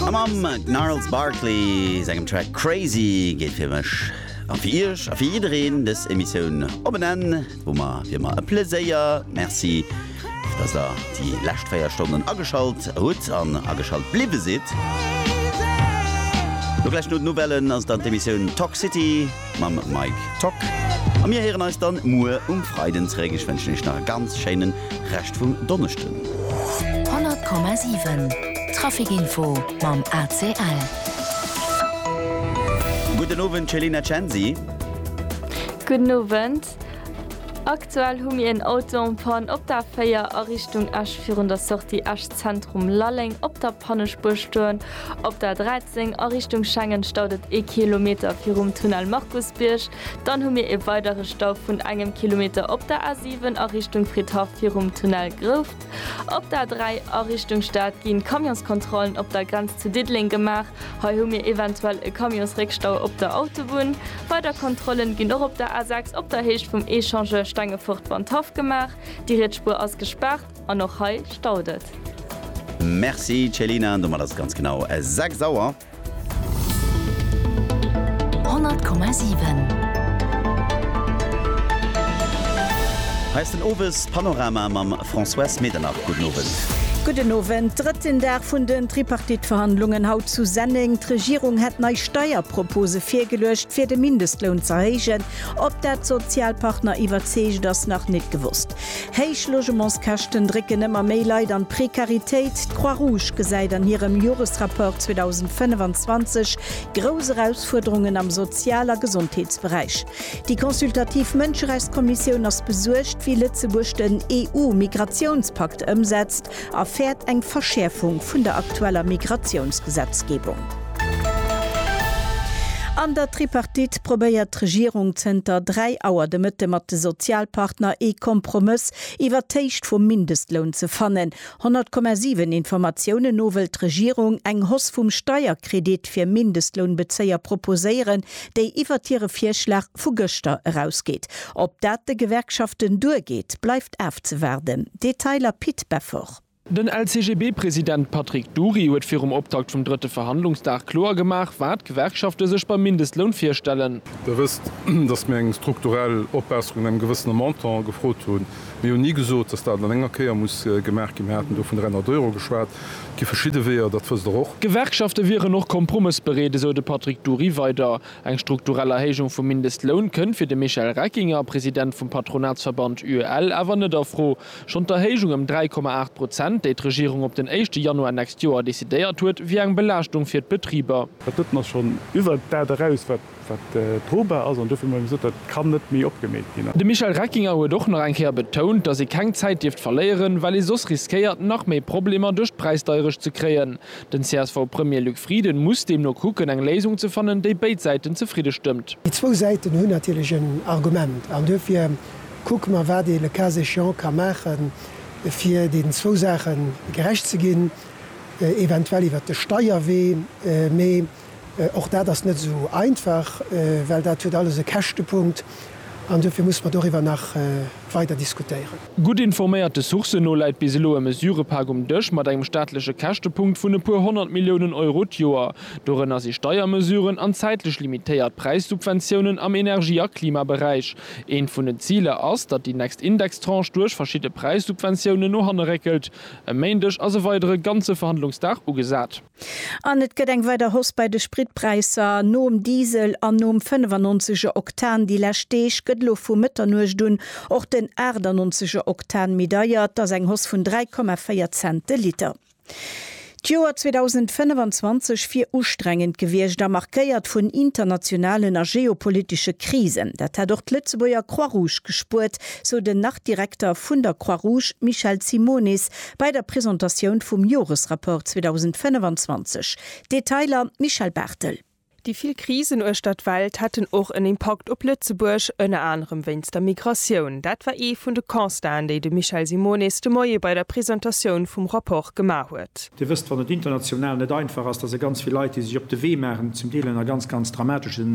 A mam Gnarls Barkley sengem Track Crazy geet fir mech a fir iech a fir jiddereen dës Emissioun op en Enn, wou mer wéi ëmmer e Pleséier. Merci, dass der déi lescht 4 Stonnen ageschalt hutt an ageschalt bliwwe sidd. Lo gläich no den Nouvellen ass dann d'Emissioun Talk City. mam Mike Tock a mir héieren eis dann muer um Freiden zréck. Ech wënschen iech nach e ganz schéinen Rescht vum Donneschden. 100,7 Trafikinfo mam ACL. Gudden Owend Céline Censi. Gudden Owend. Aktuell hu mir een Auto en panne op der A4 a Richtung Esch virun der Sortie Esch Zentrum Lalleng op der Pannespuer stoen. Op der A13 a Richtung Schengen staut et ee Kilometer virum Tunnel Markusbierg. Dann hu mir ee weidere Stau vun engem Kilometer op der A7 a Richtung Fridhaff virum Tunnel Grouft. Op der A3 a Richtung Stad ginn d'Camionskontrollen op der Grenz zu Diddeleng gemaach. Hei hu mir eventuell e Camionsréckstau op der Autobunn. Weider Kontrollen ginn och op der A6 op der Héicht vum Echangeur Stengefort-Banthaff gemaach. Déi riets Spuer ass gespaart an och hei staut et. Merci Céline, domat ass et ganz genau 6 Auer. 100,7. Hei ass den Owes Panorama mam Françoise Medernach. Gudden Owend. Gudden Owend. Drëtten Dag vun den Tripartite-Verhandlungen haut zu Senneng. D'Regierung hätt nei Steierpropose virgeluecht, fir de Mindestloun z'erhéijen. Ob dat d'Sozialpartner iwwerzeegt, ass nach nit gewosst. Héich Logementskäschten drécken ëmmer méi Leit an d'Prekaritéit. D'Croix Rouge gesäit an hirem Joresrapport 2025 grouss Erausfuerderungen am Sozial a Gesondheetsberäich. Déi consultativ Mënscherechtskommissioun ass besuergt, wéi Lëtzebuerg den EU-Migratiounspakt ëmsetzt. Erfäert eng Verschäerfung vun der aktueller Migratiounsgesetzgebung. An der Tripartite probéiert d'Regierung zënter 3 Auer de Mëtte mat de Sozialpartner ee Kompromëss iwwert d'Héicht vum Mindestloun ze fannen. 100,7 Informatiounen no wëllt d'Regierung eng Hausse vum Steierkredit fir Mindestlounbezéier proposéieren, déi iwwert hire Virschlag vu gëschter erausgeet. Ob dat de Gewerkschaften duergeet, bleift afzewaarden. Detailer, Pit Beffort. Den LCGB-President Patrick Dury huet virum Optakt vum drëtte Verhandlungsdag kloer gemaach, wat d'Gewerkschafte sech beim Mindestloun virstellen. Der wësst, datt mir eng strukturell Opbesserung un engem gewëssene Montant gefrot hunn. Mir hunn ni gesot, datt dat an enger Kéier muss gemaach ginn. Mir haten do vun 300 Euro geschwat. Et gi verschidde Weeër, dat wësst Der och. D'Gewerkschafte wieren och kompromëssbereet, esou de Patrick Dury weider. Eng strukturell Erhéijung vum Mindestloun kënnt fir de Michel Reckinger, President vum Patronatsverband UEL, awer net a Fro. Schonn d'Erhéijung ëm 3,8 Prozent, déi d'Regierung op den éischte Januar d'nächst Joer decidéiert huet, wier eng Belaaschtung fir d'Betriber. Dat doten ass schonn iwwert dat eraus, wat Wat drobar ass, an dofir hu mer eben gesot, dat kann net méi opgemeet ginn. De Michel Reckinger huet och nach eng Kéier betount, datt ee keng Zäit dierft verléieren, well ee soss riskéiert, nach méi Problemer duerch d'Präisdeierecht ze kréien. Den CSV-Premier Luc Frieden muss deemno kucken, eng Léisung ze fannen, déi béid Säiten zefridde stëmmt. Déi zwou Säiten hunn natierlech en Argument an duerfir kucke mer, wat ee le cas échéant ka maache fir deenen zwou Saache gerecht ze ginn, eventuell iwwert de Steierwee. Mee Och dat ass net esou einfach, well dat huet alles e Käschtepunkt, an duerfir musse mer doriwwer nach weider diskutéieren. Gutt informéierte Sourcen no läit bis elo e Mesurëpak um Dësch mat engem staatleche Käschtepunkt vun e puer honnert Milliounen Euro d'Joer. Dorënner si Steiermesuren an zäitlech limitéiert Präissubventiounen am Energie a Klimaberäich. Eent vun den Ziler ass, datt déi nächst Indextranche duerch verschidde Präissubventiounen no hanne réckelt. E Méindeg ass e weidere ganze Verhandlungsdag ugesat. An et gëtt eng weider Hausse bei de Spritpräisser. Nom Diesel an nom 95 er Oktan déi lescht Deeg, gëtt elo vu Mëtternuecht un och den 98 er Oktan méi deier. Et ass eng Hausse vun 3,4 Cent de Liter. D'Joer 2025 wier ustrengend gewiescht a markéiert vun internationalen a geopolitesche Krisen. Dat hätt och d'Lëtzebuerger Croix-Rouge gespuert, sou den nach-Direkter vun der Croix-Rouge Michel Simonis Bei der Presentatioun vum Joresrapport 2025. Detailer, Michèle Barthel. Déi vill Krisen uechter d'Welt hätten och en Impakt op Lëtzebuerg, ënner anerem wéinst der Migratioun. Dat war ee vun de Constaten, déi de Michel Simonis de Moie bei der Presentatioun vum Rapport gemaach huet. Dir wësst, wann et international net einfach ass, da si ganz vill Leit, déi sech op de Wee maachen, zum Deel ënner ganz, ganz dramatesche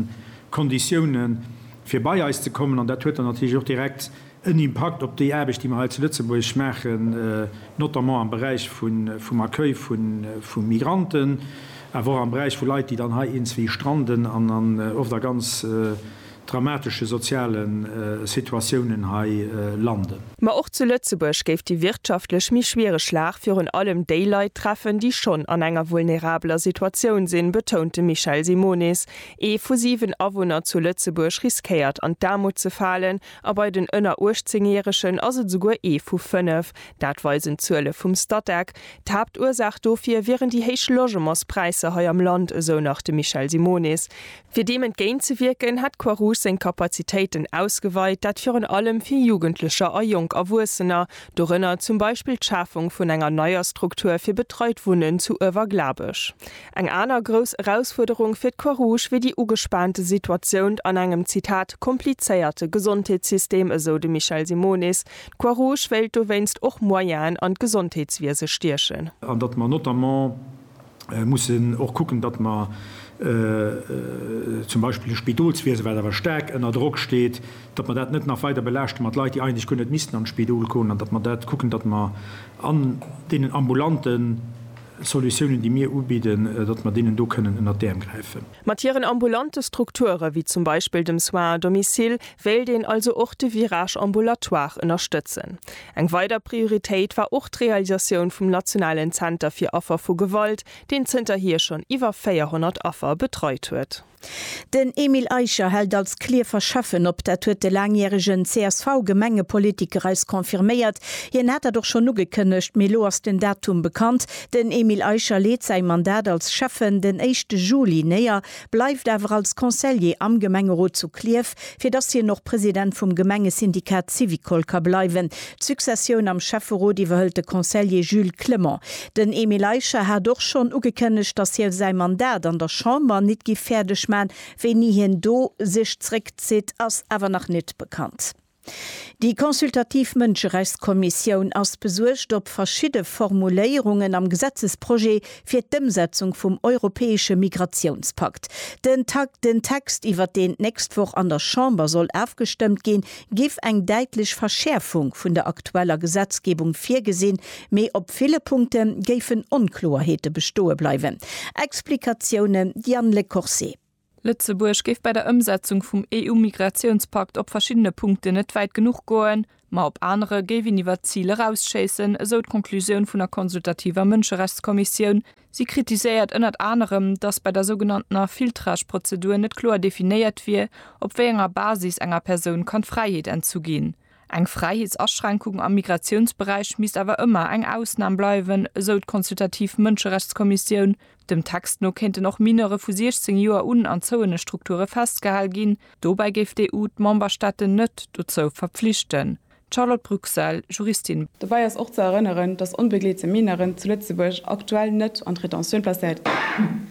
Konditiounen, fir bei eis ze kommen. An dat huet dann natierlech och direkt en Impakt op déi Aarbecht, déi mer hei zu Lëtzebuerg maachen, notamment am Beräich vum Accueil vu Migranten, awer och am Beräich vu Leit, déi dann hei een, zwee stranden an an oft a ganz dramatesche soziale Situatiounen hei landen. Ma och zu Lëtzebuerg géif déi wirtschaftlech méi schwiereg Lag virun allem déi Leit treffen, déi schonn an enger vulnerabeler Situatioun sinn, betount de Michel Simonis. Ee vu siwen Awunner zu Lëtzebuerg riskéiert an d'Aarmut ze falen, A bei den ënner 18 Järegen ass et esouguer ee vu fënnef. Dat weisen d'Zuele vum Statec. D'Haaptursaach dofir wieren déi héich Logementspräisser hei am Land, esou nach de Michel Simonis. Fir deem entgéintzewierken, hätt d'Croix-Rouge seng Kapazitéiten ausgeweit, dat virun allem fir Jugendlecher a jonk Erwuessener, dorënner zum Beispill d'Schafung vun enger neier Struktur fir betreit Wunnen zu Uewerglabech. Eng aner grouss Erausfuerderung fir d'Croix Rouge wier déi ugespaante Situatiount an engem, Zitat, komplizéierte Gesondheetssystem, esou de Michel Simonis. D'Croix Rouge wéilt dowéinst och Moyenen an d'Gesondheetswiese stiechen. An datt mer notamment mussen och kucken, datt mer zum Beispill de Spidolswiese, wat awer staark ënner Drock steet, datt mer dat net nach weider belaaschte mat Leit, déi eigentlech guer net missten an d'Spidol goen, an datt mer dat kucken, datt mer an deenen ambulanten. Solutiounen, déi mir ubidden, datt mer deenen do kënnen ënnert d'Äerm gräifen. Mat hiren ambulante Strukture wéi zum Beispill dem Soins à domicile wéilt een also och de Virage ambulatoire ënnerstëtzen. Eng weider Prioritéit war och d'Realisatioun vum nationalen Zenter fir Affer vu Gewalt, deen zënterhier schonn iwwer 400 Affer betreit huet. Den Emile Eicher hält als Clierfer Schäffen op. Dat huet de laangjäregen CSV-Gemengepolitiker eis confirméiert. Hien hat dat och schonn ugekënnegt, mee elo ass den Datum bekannt. Den Emile Eicher leet säi Mandat als Schäffen den éischte Juli néier, bleift awer als Conseiller am Gemengerot zu Clierf, fir datt hien och President vum Gemengesyndikat Syvicol ka bleiwen. D'Successioun am Schäfferot iwwerhëlt de Conseiller Jules Clement. Den Emile Eicher hat och schonn ugekënnegt, dass hie säi Mandat an der Chamber nit giff fäerdeg man. Wéini hien do sech zréckzitt, ass awer nach nit bekannt. Déi consultativ Mënscherechtskommissioun ass besuergt op verschidde Formuléierungen am Gesetzesprojet fir d'Ëmsetzung vum europäesche Migratiounspakt. Den Text, iwwert deen d'nächst Woch an der Chamber soll afgestëmmt ginn, géif eng däitlech Verschäerfung vun der aktueller Gesetzgebung virgesinn, mee op ville Punkte géifen Onkloerheete bestoe bleiwen. Explikatiounen, Diane Le Corset. Lëtzebuerg géif bei der Ëmsetzung vum EU-Migratiounspakt op verschiddene Punkten net wäit genuch goen, ma op anere géif een iwwer d'Zil erausschéissen, esou d'Conclusioun vun der consultativer Mënscherechtskommissioun, Si kritiséiert ënnert anerem, datt bei der sougenanntener Filtrage-Prozedur net kloer definéiert wier, op wéi enger Basis enger Persoun kann d'Fräiheet entzu ginn. Eng Fräiheetsaschränkung am Migratiounsberäich misst awer ëmmer eng Ausnam bleiwen, esou d'Consultativ Mënscherechtskommissioun. Dem Text no kéinten och Mineure vu 16 Joer un an Zouenestrukture festgehal ginn. Dobäi géif d'EU d'Memberstaaten net dozou verpflichten, D'Charlotte Bruxel, Juristin. Dobäi ass och ze erënneren, datt onbegleete Mineuren zu Lëtzebuerg aktuell net an d'Rétention placéiert ginn.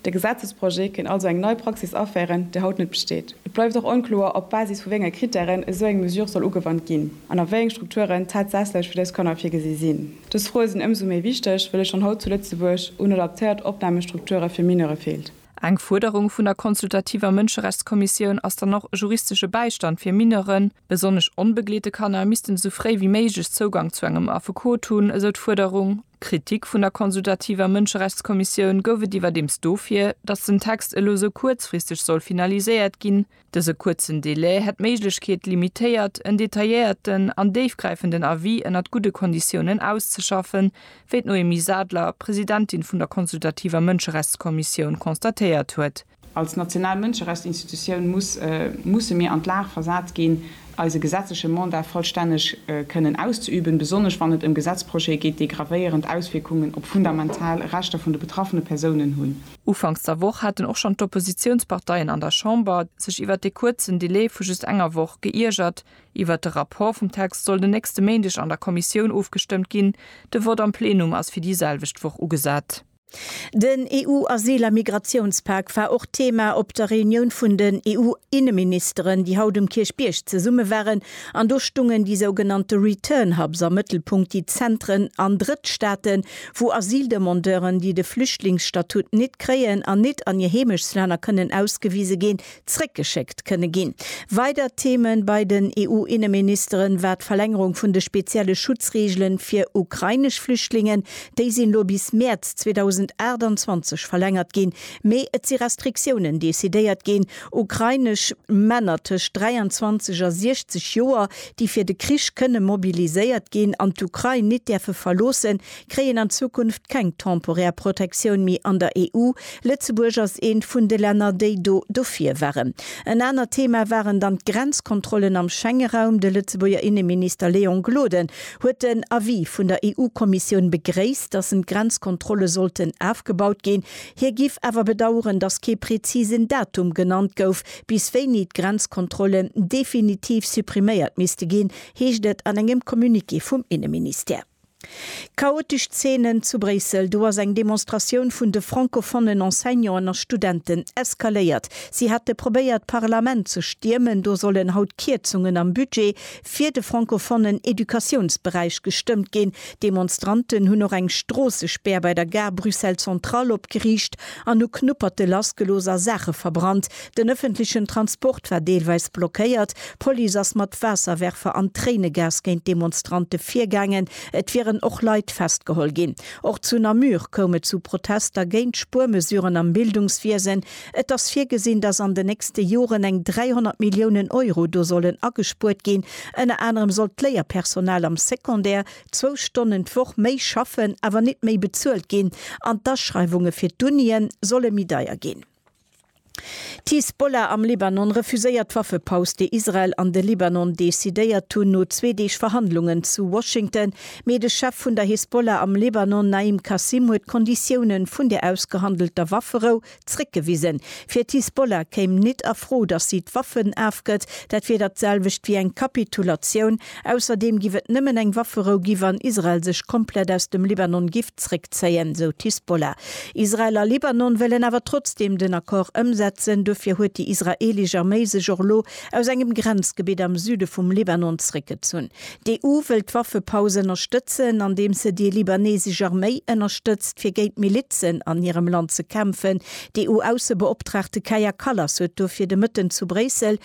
De Gesetzesprojet kéint also eng nei Praxis aféieren, déi haut net besteet. Et bleift och onkloer, op Basis vu wéi enge Krittären esou eng Mesure soll ugewannt ginn an a wéi eng Strukturen tatsächlech fir dës Kanner virgesi sinn. Dës Froe sinn ëmsou méi wichteg, wëll et schonn haut zu Lëtzebuerg un adaptéiert Opnamestrukture fir Mineure feelt. Eng Fuerderung vun der consultativer Mënscherechtskommissioun ass dann och juristesche Bäistand fir Mineuren, Besonnesch onbegleete Kanner missten esou fréi wéi méiglech Zougang zu engem Affekot hunn, esou d'Fuerderung. Kritik vun der consultativer Mënscherechtskommissioun gouf et iwwerdeems dofir, datt den Text elo esou kuerzfristeg soll finaliséiert ginn. Dëse kuerzen Delai hätt d'Méiglechkeet limitéiert, en detailléierten an déifgräifenden Avis ënnert gudde Konditiounen auszeschaffen, wéi d'Noémie Sadler, Presidentin vun der consultativer Mënscherechtskommissioun, constatéiert huet. Als national Mënscherechtsinstitutioun muss, musse mir an d'Lag versat ginn, eise gesetzleche Mandat vollstänneg kënnen auszeüben, besonnesch wann et ëm Gesetzprojete geet, déi gravéierend Auswierkungen op fundamental Rechter vun de betraffene Persounen hunn. Ufanks der Woch haten och schonn d'Oppositiounsparteien an der Chamber sech iwwert dee kuerzen Delai vu just enger Woch geiergert. Iwwert de Rapport vum Text soll den nächste Méindeg an der Kommissioun ofgestëmmt ginn, de Vott am Plenum ass fir déi selwecht Woch ugesat. Den EU-Asyl a Migratiounspak war och Thema op der Reunioun vun den EU-Inneministeren, déi haut um Kierchbierg zesumme waren. An do stungen déi sougenannte Return Hubs am Mëttelpunkt, déi Zentren an Drëttstaaten, wou Asyldemandeuren, déi de Flüchtlingsstatut nit kréien an nit an hir Heemechtsländer kënnen ausgewise ginn, zréckgeschéckt kënne ginn. Weider Theme bei den EU-Inneministere war d'Verlängerung vun de spezielle Schutzreegele fir ukrainesch Flüchtlingen. Déi sinn elo bis Mäerz 2028 verlängert ginn, mee et si Restriktiounen decidéiert ginn. Ukrainesch Männer tëscht 23 a 60 Joer, déi fir de Krich kënne mobiliséiert ginn an d'Ukrain nit däerfe verloossen, kréien an Zukunft keng temporär Protektioun méi an der EU. Lëtzebuerg ass eent vun de Länner, déi do dofir waren. En anert Thema waren dann d'Grenzkontrollen am Schengeraum. De Lëtzebuerger Inneminister Léon Gloden huet den Avis vun der EU-Kommissioun begréisst, dass en d'Grenzkontrolle sollten afgebaut ginn. Hie giff awer bedaueren, dass kee prezisen Datum genannt gouf, bis wéini d'Grenzkontrollen definitiv suppriméiert misste ginn, heescht et an engem Communiqué vum Inneministère. Chaotesch Zeenen zu Bréissel, Do ass eng Demonstratioun vun de francophonen Enseignanten a Studenten eskaléiert. Si hate probéiert d'Parlament ze stiermen. Do sollen haut Kierzungen am Budget fir de francophonen Educatiounsberäich gestëmmt ginn. Demonstranten hunn och eng Stroossespär bei der Gare Bruxelles Centrale opgeriicht an hu Knupperte lassgelooss a Saache verbrannt. Den ëffentlechen Transport war deelweis blockéiert, d'Police ass mat Waasserwerfer an Tréinegas géint d'Demonstrante virgaangen, et wieren och Leit festgeholl ginn. Och zu Namur koum et zu Protester géint Spuermesuren am Bildungswiesen. Et ass virgesinn, datt an den nächste Joren eng 300 Milliounen Euro do sollen agespuert ginn. Ënner anerem sollt d'Léierpersonal am Secondaire zwou Stonnen d'Woch méi schaffen, awer nit méi bezuelt ginn an d'Aschreiwunge fir d'Unie solle méi deier ginn. D'Hisbollah am Libanon refuséiert d'Waffepaus, déi Israel an de Libanon decidéiert hunn no zwee Deeg Verhandlungen zu Washington. Mee de Chef vun der Hisbollah am Libanon, Naim Qassem, huet d'Konditioune vun der ausgehandelter Wafferou zréckgewisen. Fir d'Hisbollah kéim nit a Fro, datt si d'Waffen afgëtt. Dat wier dat selwecht wéi eng Kapitulatioun, Ausserdeem giff et nëmmen eng Wafferou gi wann Israel sech komplett aus dem Libanon giff zréckzéien, sou d'Hisbollah. Israel a Libanon wëllen awer trotzdeem den Accord ëmsetzen. Duerfir huet déi israeelesch Arméi sech och elo aus engem Grenzgebitt am Süde vum Libanon zréckgezunn. D'EU wëll d'Waffepaus ënnerstëtzen, andeems se déi libanesesch Arméi ënnerstëtzt, fir géint d'Milizen an hirem Land ze kämpfen. D'EU-Aussebeoptraagte Kaja Kallas huet duerfir de Mëtten zu Bréissel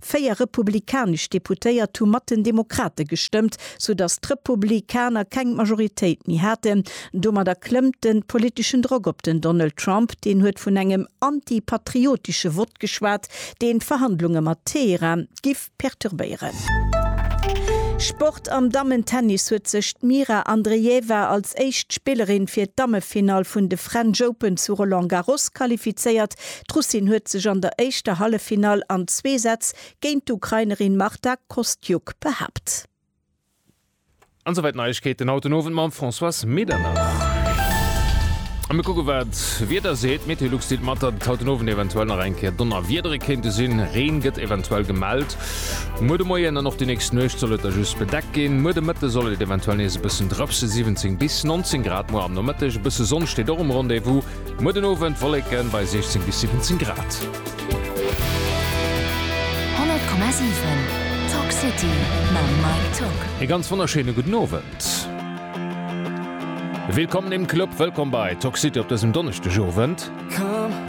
Véier republikanesch Deputéiert hu mat den Demokrate gestëmmt, soudatt d'Republi kaner keng Majoritéit méi haten. Domadder klëmmt de politeschen Drock op den Donald Trump. Deen huet vun engem anti-patriotesche Vott geschwat, deen d'Verhandlunge mat Teheran giff perturbéieren. Sport, Am Dammentennis huet sech d'Mira Andreeva als éischt Spillerin fir d'Dammefinall vun de French Open zu Roland Garros qualifizéiert. D'Russin huet sech an der éischter Halleffinall an zwee Sätz géint d'Ukrainerin Marta Kostyuk behaapt. An soweit d'Neiegkeeten haut den Owend mam Françoise Medernach. An mir kucken wat d'Wieder seet. D'Meteolux deelt mat, datt et haut den Owend eventuell nach eng Kéier Donnerwiedere kéinte sinn. Reen gëtt eventuell gemellt. Muer de Moien an och déi nächst Nuecht soll et da just bedeckt ginn. Muer de Mëtte soll et eventuell nees e bëssen drëpsen, 17 bis 19 Grad muer am Nomëtteg. E bësse Sonn steet och um Rendez-vous. Muer den Owend Wolleken bei 16 bis 17 Grad. 100,7 Talk City mam Mike Tock. Ee ganz wonnerschéine gudden Owend. Willkommen im Club, wëllkomm bei Talk City op dësem Donneschdegowend.